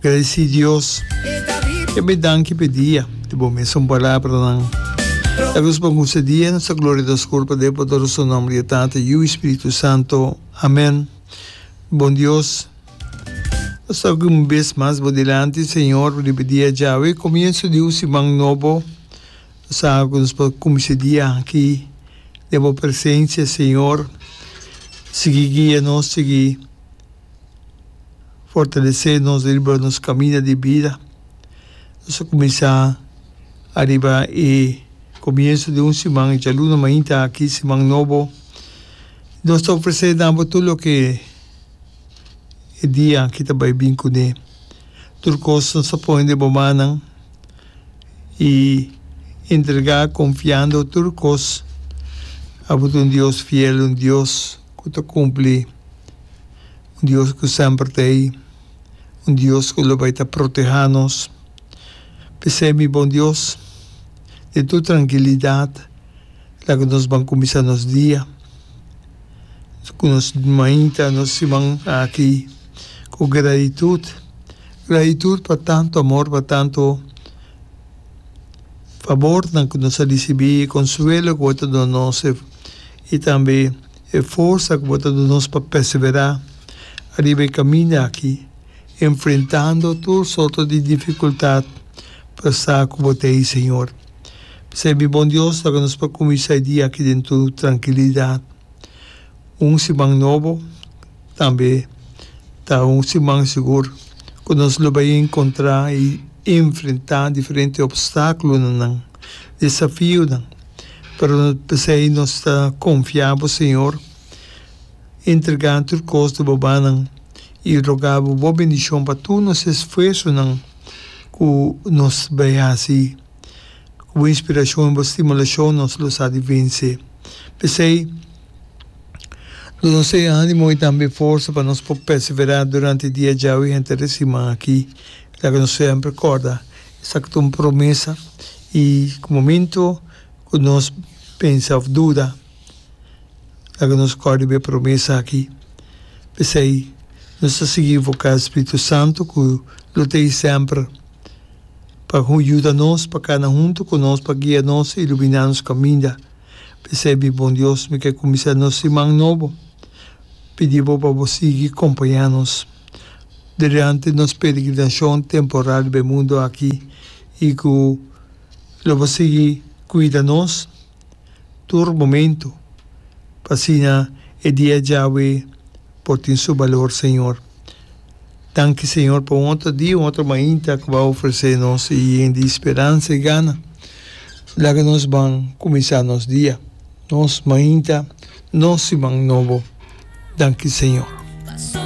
Gracias Dios e me danki p'e dia di bo mesun palabranan e nos bon usa dia nos ta gloria nos culpa den poderoso nomber di e Tata Yiu i Spiritu Santo amen bon Dios nos ta aki un bes mas bo dilanti Señor riba e dia djawe comienso di un siman nobo nos ta haga cu nos por cuminsa e dia aki den bo presencia Señor sigui guia nos sigui. fortalesé nos riba nos kaminda di bida. Nos a kuminsá ariba e komienso di un siman, djaluna mainta aki, siman nobo. Nos ta ofresé na bo tur loke e dia aki ta bai bin kuné. Tur kos nos a pone den bo mannan i entregá konfiando tur kos a bo ta un Dios fiel, un Dios. ku ta kumpli, un Dios ku semper ta ei, un Dios ku lo bai ta protehá nos. P'esei mi bon Dios, den tur trankilidat laga nos ban kuminsá nos dia ku nos mainta nos siman aki ku gratitut, gratitut pa tantu amor, pa tantu fabornan ku nos a risibí, konsuelo ku bo ta duna nos. i tambe e forsa ku bo ta duna nos pa perseverá ariba e kaminda aki, enfrentando tur sorto di difikultat pa sa ku bo ta ei, Señor. P'esei, mi bon Dios, laga nos pa kuminsá e dia aki den tur trankilidat. Un siman nobo tambe ta un siman sigur ku nos lo bai enkontrá i enfrentá diferente opstákulonan. desafionan, pero no ta p'esei nos ta konfia bo, Señor. Entregá tur kos di bobanan i rogá bo bo bendishon pa tur nos esfuersonan ku nos bai hasi. Ku bo inspirashon i bo stimulashon nos lo sa di vense. P'esei, duna nos e ánimo i tambe forsa pa nos por perseverá durante dia djau i henter e siman aki. Laga nos semper kòrda Sa cu ta un promesa y cu momento cu nos pensa of duda laga nos cori be promesa aki. P'esey nos ta sigui invoca e Spiritu Santo cu lo ta ahi semper pa yuda nos, pa cana hunto cu nos, pa guia nos y lumina nos caminda. P'esey mi bon Dios, mi ke cuminsa nos siman nobo pidi bo pa bo sigui compaña nos. Durante nos peregrinacion temporal riba e mundo aki y cu lo por sigui cuida nos tur momento pa asina e dia djawe por tin su balor Señor. Danki Señor pa un otro dia, un otro mainta cu bo a ofrece nos y yen di speransa y gana. Laga nos ban cuminsa nos dia, nos mainta, nos siman nobo. Danki Señor.